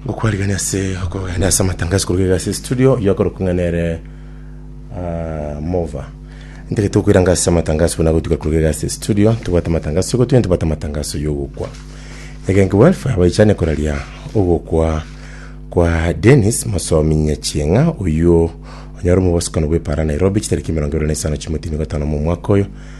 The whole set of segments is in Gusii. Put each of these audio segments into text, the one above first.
Gokwarigania ase okogenda ase amatangazo koruga iga ase studio oyio akorokwa ng'a nere ah, Mova. Ntagete gokoiranga ase amatangazo buna gotuka koruga iga ase studio tobwate amatangazo yogotuya tobwate amatangazo yogokwa. Egenki welfare baichane koraria ogokwa kwa Dennis Mosomi Nyachieng'a oyio onyare omobosokano bw'epara Nairobi chitariki emerongo ebere na isano chimotini gatano momwaka oyo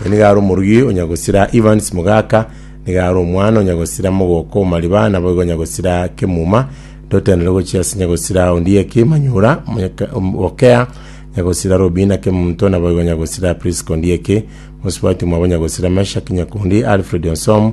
Oyo nigo are omorugi onya gosira Evans Mugaka, nigo are omwana onya gosira mogoko o Mariba, naboigo onya gosira Kemuma. Ndotenderwe gochia ase onya gosira Ondieki Manyora, Omonyaka- Om- Okea, onya gosira Robina Kemunto, naboigo onya gosira Prisca Ondieki, mosubati mwabo onya gosira Meshack Nyakundi, Alfred Onsom,